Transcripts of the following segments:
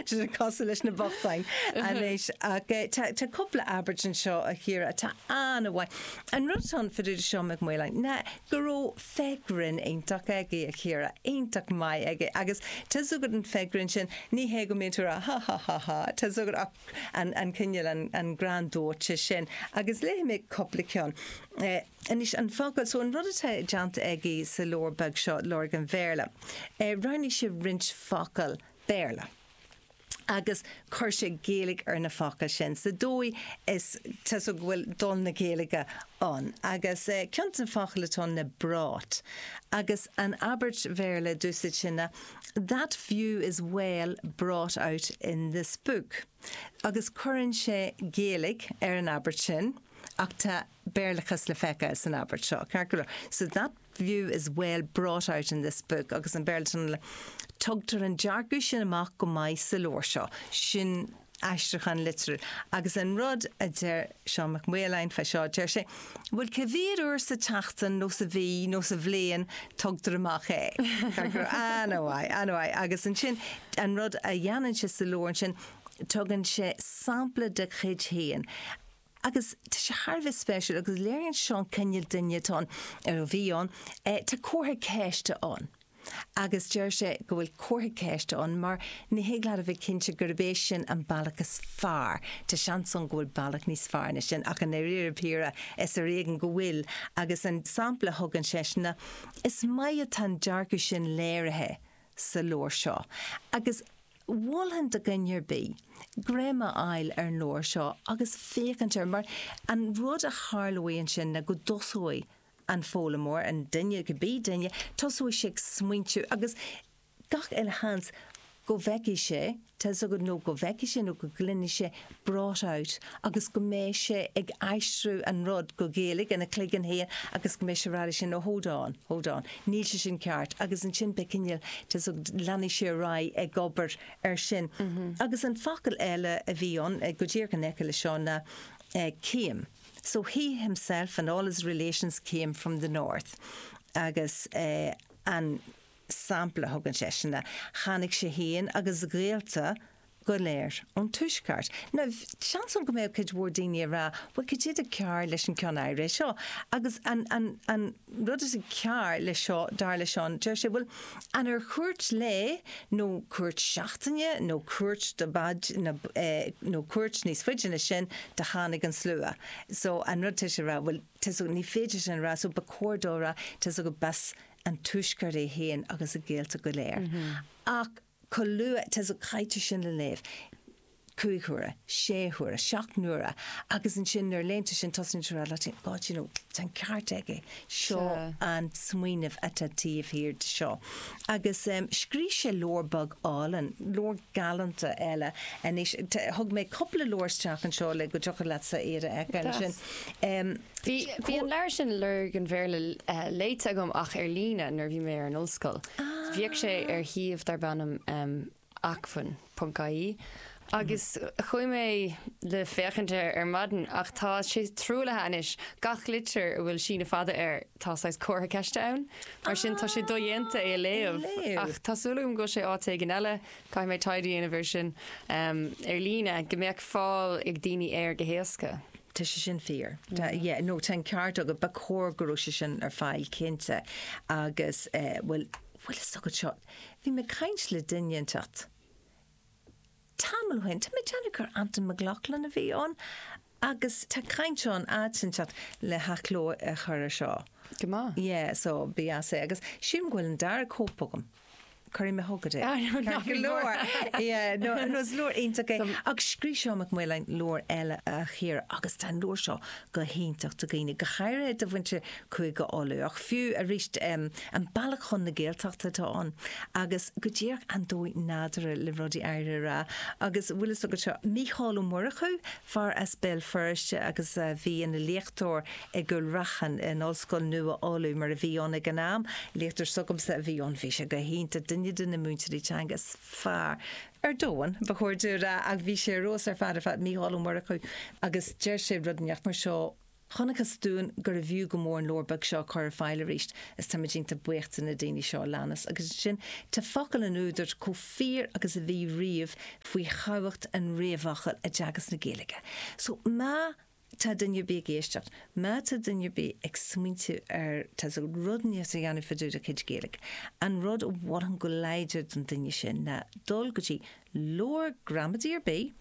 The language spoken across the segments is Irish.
Sin cosúil leis na bochtáin anois. Ach tá cúpla abairt anseo, a Chiara, atá an-mhaith. An rud atá ann faoi dtaobh de seo, Mac Maoláin, ná go raibh féith ghrinn iontach aige, a Chiara, iontach maith aige. Agus tá fhios agat an fhéith ghrinn sin, ní hé go mbíonn tú a rá ha ha ha ha, tá fhios agat ach an cineál, an greann dóite sin. Agus léifidh mé cúpla ceann. Anois an focal, so an rud atá déanta aige sa leabhar beag seo, Lorg an Bhéarla, roghnaigh sé roinnt focal, Béarla. Agus chuir sé Gaeilge ar na focail sin sa dóigh is, tusa, go bhfuil dul na Gaeilge ann. Agus ceann de na focail atá ann ná brought. Agus an abairt Bhéarla a d'úsáid sé ná That view is well brought out in this book. Agus cuireann sé Gaeilge ar an abairt sin, ach tá Béarlachas le feiceáil san abairt seo, ceart go leor, so that view is well brought out in this book agus an Béarlachas sin ná, tugtar an dearcadh sin amach go maith sa leabhar seo, sin aistriúchán liteartha, agus an rud a deir Seán Mac Maoláin fá seo, deir sé, bhuel, cá mhéad uair sa tseachtain nó sa mhí nó sa bhliain tugtar amach é? Ceart go leor, ah no, aye, ah no, aye, agus ansin an rud a dhéanann sé sa leabhar ansin, tugann sé sampla de chuid féin, Agus tá sé thar a bheith spéisiúil agus léiríonn seo an cineál duine atá ann, nó a bhí ann. Tá comhartha ceiste ann agus deir sé go bhfuil comhartha ceiste ann mar ní thig leat a bheith cinnte gurb é sin an bealach is fearr. Tá seans ann go bhfuil bealach níos fearr ná sin ach i ndáiríre píre is ar éigean go bhfuil agus an sampla a thugann seisean, is maith atá an dearcadh sin léirithe sa leabhar seo agus. Mholfainn do dhuine ar bith greim a fháil ar an leabhar seo agus féachaint air, mar an rud a tharlóidh ansin ná go dtosóidh an foghlaimeoir, an duine, cibé duine, tosóidh sé ag smaointiú agus gach uile sheans go bhfeicfidh sé, tá's agat, nó go bhfeicfidh sé nó go gcluinfidh sé brought out agus go mbeidh sé ag aistriú an rud go Gaeilge ina chloigeann féin agus go mbeidh sé ag rá leis féin, oh hold on, hold on, níl sé sin ceart agus ansin beidh cineál, tá's agat, leanfaidh sé ar aghaidh ag obair air sin. Agus an focal eile a bhí ann, go díreach in aice leis seo, ná came so he himself and all his relations came from the North agus an sampla a thugann seisean ná tháinig sé féin agus a ghaolta go léir ón Tuaisceart. Now, seans ann go mbeadh cuid mhór daoine ag rá, bhuel, cad é atá cearr leis an cheann áirithe seo? Agus an rud atá cearr leis seo, dar le Seán, deir sé, bhuel, an ar chuairt lae nó cuairt seachtaine nó cuairt nó cuairt níos faide ná sin a tháinig an slua? So, an rud tá sé a rá, bhuel, tá's agat, ní féidir sin a rá, so ba chóir dó a rá, tá's agat, gurb as an Tuaisceart é féin agus a ghaolta go léir. Ach. chomh luath, tá's agat, caitear sin le léamh, cúig huaire, sé huaire, seacht n-uaire, agus ansin nuair a léann tú sin tosnaíonn tú a rá leat féin, God you know, tá an ceart aige, seo an smaoineamh atá taobh thiar de seo. Agus scríobh sé leabhar beag álainn, leabhar galánta eile anois, thug mé cupla leabhar isteach anseo le go dtiocfadh leatsa iad a fheiceáil ansin. Bhí an leabhar sin, Lorg an Bhéarla, léite agam ach ar líne nuair a bhí mé ar an ollscoil. Bhíodh sé ar shuíomh darb ainm Acmhainn ponc ie agus chuaigh mé le féachaint air ar maidin ach tá sé truaillithe anois, gach litir a bhfuil síneadh fada uirthi tá saghas comhartha ceiste ann, mar sin tá sé dodhéanta é a léamh. Ach tá súil agam go bhfuil sé áit éigin eile. Caithfidh mé taighde a dhéanamh air sin ar líne go mbeadh fáil ag daoine air go héasca. Tá sé sin fíor. Tá, yeah, no, tá an ceart agat, ba chóir go raibh sé sin ar fáil, cinnte, agus, eh, bhuel, bhfuil fhios agat seo, bhí mé ag caint le duine inteacht tamall ó shin, tá mé ag déanamh gur Antain Mac Lochlainn a bhí ann, Agus tá caint ann, áit inteacht le hathchló a chur ar seo. Go maith. Yeah, so bíos é. Agus sílim go bhfuil an dara cóip agam. Cuirfidh mé chugat é. Ah, no, ná bí mór! Yeah, no, no, is leabhar iontach é. Agus scríobh Seán Mac Maoláin leabhar eile, a chara, agus tá an leabhar seo go hiontach do dhaoine, go háirithe do mhuintir Cúige Uladh. Ach fiú arís, An Bealach chun na Gaeltachta atá ann agus go díreach an dóigh nádúrtha le rudaí a rá. Agus bhfuil fhios agat seo, Mícheál Ó Murchú, fear as Béal Feirste agus a bhí ina léachtóir i gCúil Raithin in Ollscoil Nua Uladh, mar a bhí ann ag an am, léachtóir s'agamsa a bhí ann, bhí sé go hiontach, duine de na múinteoirí teanga is fearr ar domhan, ba chóir dúinn a rá, ach bhí sé ar fheabhas ar fad ar fad, Mícheál Ó Murchú, agus deir sé rud inteacht mar seo. Chonacthas dúinn gurbh fhiú go mór an leabhar beag seo a chur ar fáil arís, is táimid iontach buíoch de na daoine seo a leanas, agus ansin tá focail an údair chomh fíor agus a bhí riamh faoi thábhacht an réamhfhocail i dteagasc na Gaeilge. So, má tá duine ar bith ag éisteacht, má tá duine ar bith ag smaointiú ar tá's agat rud inteacht a dhéanamh fadúda a chuid Gaeilge, an rud a mholfainn go láidir don duine sin ná dul go dtí leabhar gramadaí ar bith,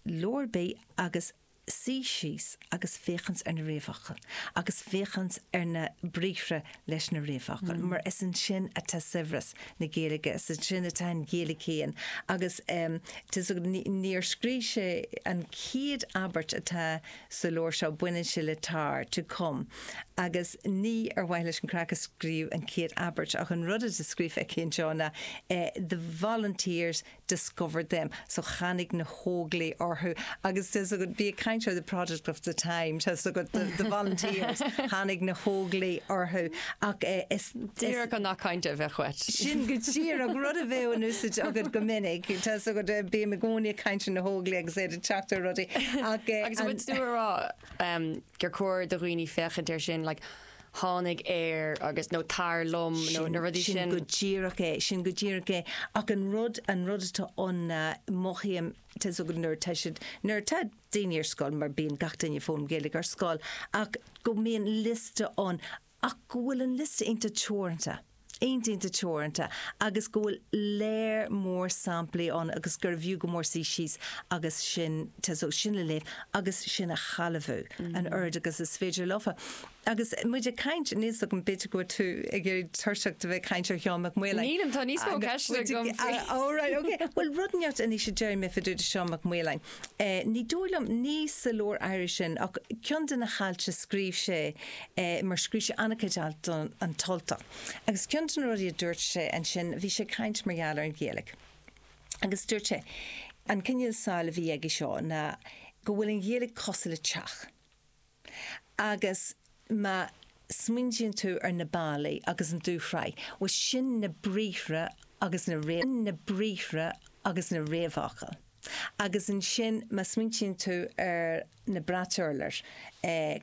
leabhar ar bith, agus suí síos agus féachaint ar na réamhfhocail agus féachaint ar na briathra leis na réamhfhocail mar is ansin atá saibhreas na Gaeilge, is ansin atá an Ghaeilge féin agus nuair a scríobh sé an chéad abairt atá sa leabhar seo, baineann sé le tar, to come, agus ní ar mhaithe leis an gcraic a scríobhadh an chéad abairt ach an rud atá scríofa aige anseo ná the volunteers discovered them, so tháinig na hÓglaigh orthu agus tá's agat, bí ag caint ar the product of the time, tá's agat, the, the volunteers, tháinig na hÓglaigh orthu ach eh, is, Díreach an nath cainte a bheadh uait. sin go díreach, rud a bheadh in úsaid agat go minic, tá's agat, eh, bím i gcónaí ag caint ar na hÓglaigh agus iad ag teacht ar rudaí ach eh, Agus an an, bhfuil tú ag rá, em, gur chóir do dhaoine féachaint air sin, like tháinig ar agus nó tar liom nó na rudaí sin. Sin go díreach é, sin go díreach é. Ach an rud, an rud atá ann ná mothaím, tá 'fhios agat nuair atá siad, nuair atá daoine ar scoil, mar bíonn gach duine ag foghlaim Gaeilge ar scoil, ach go mbíonn liosta ann ach go bhfuil an liosta iontach teoranta, iontach teoranta, agus go bhfuil léar mór samplaí ann agus gurbh fhiú go mór suí síos agus sin, tá's agat, sin a léamh agus sin a shealbhú an oiread agus is féidir leofa. Agus muid ag caint, níl 's agam, b'fhéidir go bhfuil tú ag éirí tuirseach de bheith ag caint ar Sheán Mac Maoláin. Nílim, tá níos mó ceisteanna agam faoi. All right, okay. Bhuel, rud inteacht anois a déarfaidh mé fá dtaobh de Sheán Mac Maoláin. Ní dóigh liom, ní sa leabhar áirithe sin ach ceann de na hailt a scríobh sé, mar scríobh sé an-chuid alt do An tUltach, agus ceann de na rudaí a dúirt sé ansin, bhí sé ag caint mar gheall ar an Ghaeilge agus dúirt sé, an cineál samhail a bhí aige seo ná go bhfuil an Ghaeilge cosúil le teach. Agus má smaoiníonn tú ar na ballaí agus an dúshraith, bhuel sin na briathra agus na, sin na briathra agus na réamhfhocail. Agus ansin má smaoiníonn tú ar na brait urláir, eh,